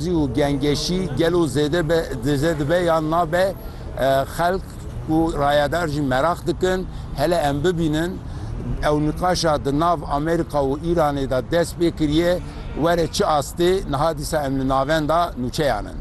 Zî û gengeşî gelo zêde be, zêde dibe yan nabe, xelk û rayedar jî meraq dikin hele em bibînin ew niqaşa di nav Amerîka û Îranê de dest pê kiriye were çi astê, niha dîsa em li navenda nûçeyan in.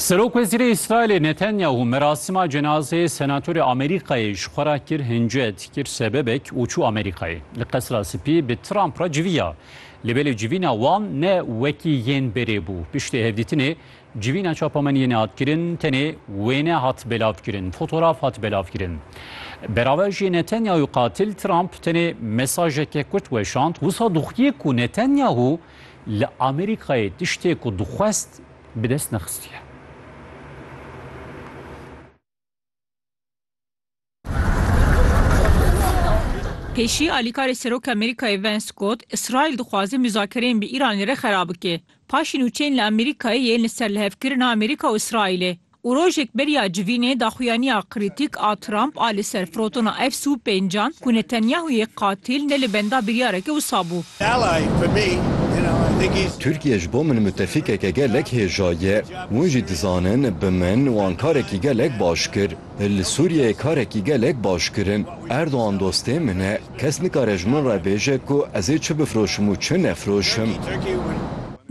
Serokwezîrê Îsraîlê Netanyahu merasîma cenazeyê senatorê Amerîkayê ji xwe re kir hince, dikir sebebek û çû Amerîkayê. Li Qesra Spî bi Trump re civiya. Lê belê civîna wan ne wekî yên berê bû. Piştî hevdîtinê civîna çapemeniyê nehat kirin, tenê wêne hat belavkirin, fotoraf hat belavkirin. Beraver jî Netanyahu qatil Trump tenê mesajeke kurt weşand, wisa doxiyê ku Netanyahu Li Amerîkayê tiştê ku dixwest bi dest nexistiye. Pêşî alîkarê Serokê Amerîkayê Vance got, Îsraîl dixwaze mûzakereyên bi Îranê re xera bike. Paşî nûçeyên li Amerîkayê yên li ser lihevkirina Amerîka û Îsraîlê. Û rojek beriya civînê daxuyaniya krîtîk a Trump a li ser firotona F-sû pêncand ku Netanyahuyê qatîl ne li benda biryareke wisa bû. Tirkiye ji bo min mutefîkeke gelek hêja ye. Hûn jî dizanin bi min wan karekî gelek baş kir. Li Sûriyeyê karekî gelek baş kirin. Erdogan dostê min e. Kes nikare ji min re bêje ku ez ê çi bifroşim û çi nefroşim.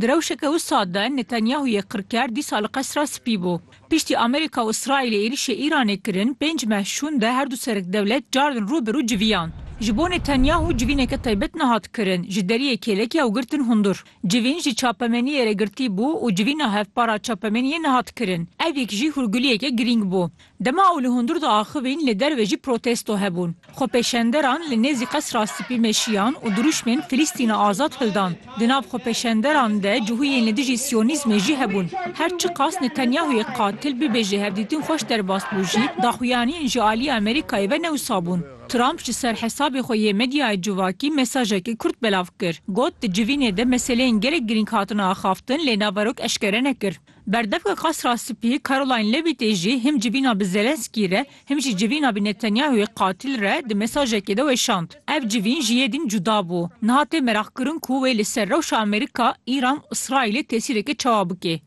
Di rewşeke wisa de Netanyahûyê qirker dîsa li Qesra Spî bû. Piştî Amerîka û Îsraîlê êrîşê Îranê kirin, pênc meh şûn de herdu sereddewlet carin rû bi rû civîyan. Ji bo Netanyahû civîneke taybet nehat kirin, ji deriyê kêlekê ew girtin hundur. Civîn ji çapemeniyê re girtî bû û civîna hevpar a çapemeniyê nehat kirin. Ev yek jî hûrguliyeke girîng bû. Dema ew li hundir diaxivîn li derve jî protesto hebûn. Xwepêşenderan li nêzî Qesra Spî meşiyan û dirûşmên Filîstîna Azad hildan. Di nav xwepêşenderan de cihûyên li dijî Siyonîzmê jî hebûn. Her çiqas Netanyahûyê qatil bibêje hevdîtin xweş derbas bû jî, daxuyaniyên ji aliyê Amerîkayê ve ne wisa bûn. Trump ji ser hesabê xwe yê medyayê civakî mesajekî kurt belav kir. Got di civînê de meseleyên gelek girîng hatine axaftin lê naverok eşkere nekir. Berdevka Qasra Spî Caroline Levittê jî him civîna bi Zelensky re him jî civîna bi Netanyahuyê qatîl re di mesajekê de weşand. Ev civîn ji yê din cuda bû. Niha tê meraqkirin ku wê li ser rewşa Amerîka, Îran û Îsraîlê tesîreke çawa bikê.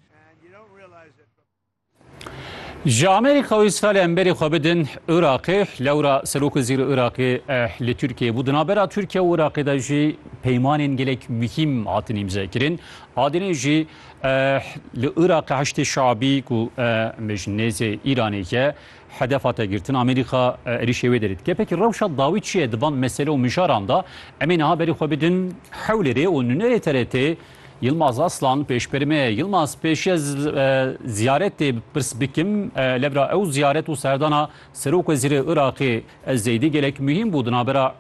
Ji Amerîka û Îsraîlê em berî xwe bidin Iraqê. Lewra Serokizîr Iraqê li Tirkiyeyê bû. Di navbera Tirkiye û Iraqê de jî peymanên gelek muhîm hatin îmzekirin. Adênê jî Eh li Iraqê Heşdê Şabî ku em bêjin nêzê Îranê ye hedef hate girtin Amerîka êrîşê wê derê dike. Pekî rewşa dawî çi ye di van mesele û mijaran de? Em ê niha berî xwe bidin Hewlêrê û nûnerê TRT'ê Yilmaz Aslan pêşberî me ye. Yilmaz pêşî ez ziyaretê pirs bikim lê bira ew ziyaret û serdana Serok Wezîrê Iraqê ez zeydî gelek muhîm bû di navbera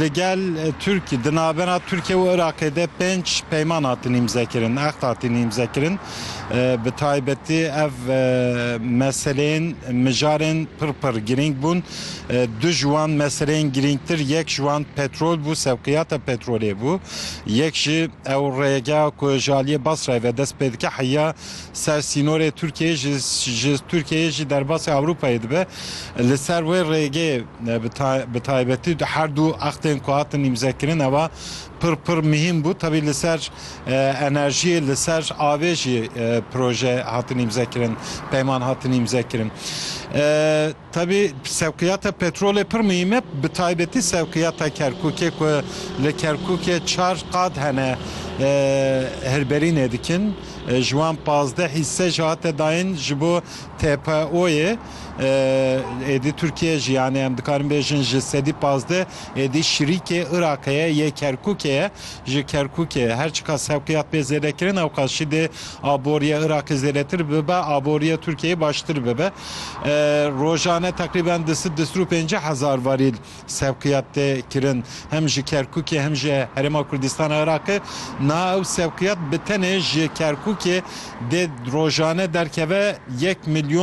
Li gel Tirk di navbera Tirkiye û Iraqê de pênc peyman hatin îmzekirin, aqd hatin îmzekirin. Bi taybetî ev meseleyên mijarên pir pir girîng bûn. Du ji wan meseleyên girîngtir yek ji wan petrol bû, sevqiyata petrolê bû. Yek jî ew rêgeha ku ji aliyê Basrayê ve dest pê dike heya ser sînorê Tirkiyeyê ji ji Tirkiyeyê jî derbasî Ewropayê dibe. Li ser wê rêgê bi taybetî her du extên ku hatin îmzekirin ewa pir pir mihîm bû. Tevî li ser enerjiyê li ser avê jî proje hatin îmzekirin, peyman hatin îmzekirin. Tevî sewqiyata petrolê pir muhîm e, bi taybetî sewqiyata Kerkûkê ku li Kerkûkê çar qad hene hirberînê dikin. Ji wan pazdeh hîsse jî hate dayîn ji bo TPO'yê. Êdî Tirkiyeyê jî yanî em dikarin bêjin ji sedî pazdeh êdî şirîkê Iraqê ye yê Kerkûkê ye. Ji Kerkûkê her çiqas sewqiyat bê zêdekirin ewqas jî dê aboriyê Iraqê zêdetir bibe, aboriyê Tirkiyeyê baştir bibe. Rojane teqrîben di sid di sed û pêncî hezar varîl sevqiyat tê kirin hem ji Kerkûkê hem ji Herêma Kurdistana Iraqê. Niha ew sevqiyat bi tenê ji Kerkûkê dê rojane derkeve yek milyon